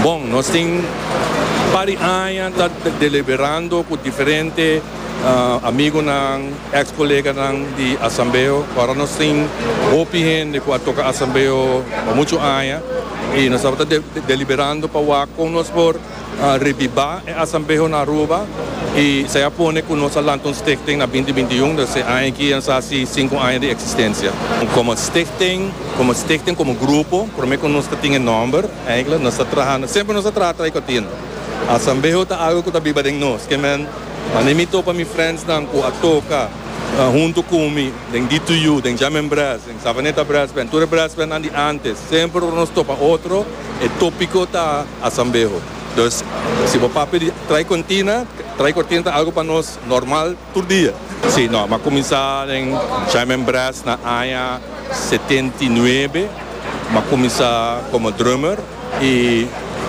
Bon, nos tin par di aña ta deliberando cu diferente amigonan, ex coleganan di Asambeo. Ora nos tin hopi hende cu a toca Asambeo pa muchu aña y nos tabata deliberando pa wak con nos por. Revivá e Asambeho na Aruba i esei a pone ku nos a lanta un stichting na binti binti un, dus e aña aki a sa si sinku aña di eksistensia. Komo stichting, komo stichting, komo grupo, promé ku nos ta tin e nòmber, eintlik nos ta traha, semper nos a traha tray kòrtina. Asambeho ta algu ku ta biba den nos, ke men, manera mi topa mi friendsnan ku a toka huntu ku mi den DTU, den Jam en Brasben, Savaneta Brasben, tur e Brasbennan di ántes, semper ora nos topa otro, E topiko ta Asambeho. Dus si bo papia di trai kontina, trai kortina ta algu pa nos normal tur dia. Sí, no, m'a kuminsá den Jaime Brass na aña setenta i nuebe. M'a kuminsá komo drummer i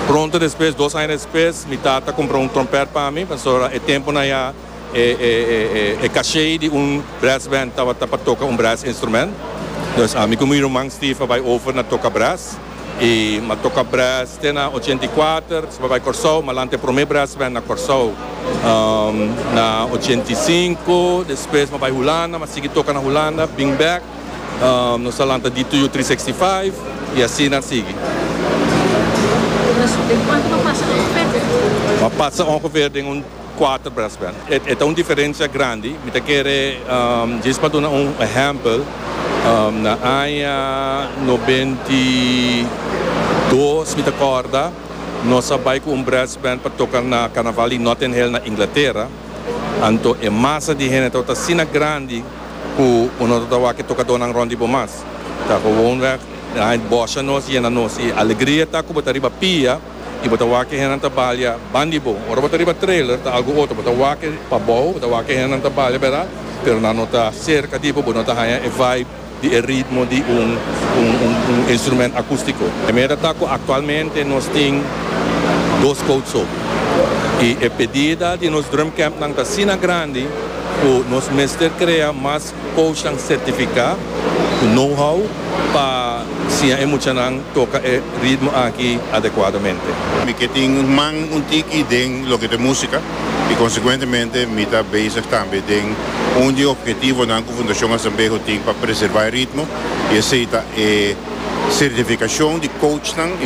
pronto despues, dos aña despues, mi tata kumprá un trompèt pa mi, pasobra e tempunan ya E caché di un brass band tabata pa toca un brass instrument. Dus ami cu mi ruman Steve a bay over na toca brass. Y m'a toca brass te na ochenta y kuater, despues bay Corsou, m'a lanta e prome brass band na Corsou na ochenta y sinku. Despues m'a bay Hulanda, m'a sigui toca na Hulanda, bin back nos a lanta DTU trescientos sesenta y cinco y asina a sigui. M'a pasa ongeveer den un. Kuater brass band. E ta un diferensia grandi. Mi ta kere djis pa duna un ehèmpel. Na aña nobenta i dos, mi ta kòrda, nos a bai ku un brass band pa toka na karnaval di Notting Hill na Inglatera. Anto e masa di hende tabata asina grandi ku bo no tabata wak e tokadónan rònt di bo mas. Ta, powónweg, na aña bòsha nos yena nos. I alegria ta ku bo ta riba pia. y bo ta wak ke hendenan ta balia ban di bo. Ora bo ta riba trailer ta algo otro, bo ta wak ke pabou, bo ta wak ke hendenan ta balia bera, pero nan no ta cerca di bo, bo no ta haya e vibe di e ritmo di un un instrument acustico. E meta ta cu actualmente nos tin dos coach so y e pedida di nos Drumcampnan ta asina grandi cu nos mester crea mas. Coachnan certifica cu know-how pa siña e muchanan toca e ritmo aki adecuadamente. Mi ke tin man un tiki den loke ta musica y consecuentemente mi ta bezig tambe den un di e objetivonan cu Fundacion Asambeho tin pa preserva e ritmo y esey ta e certificacion di coachnan.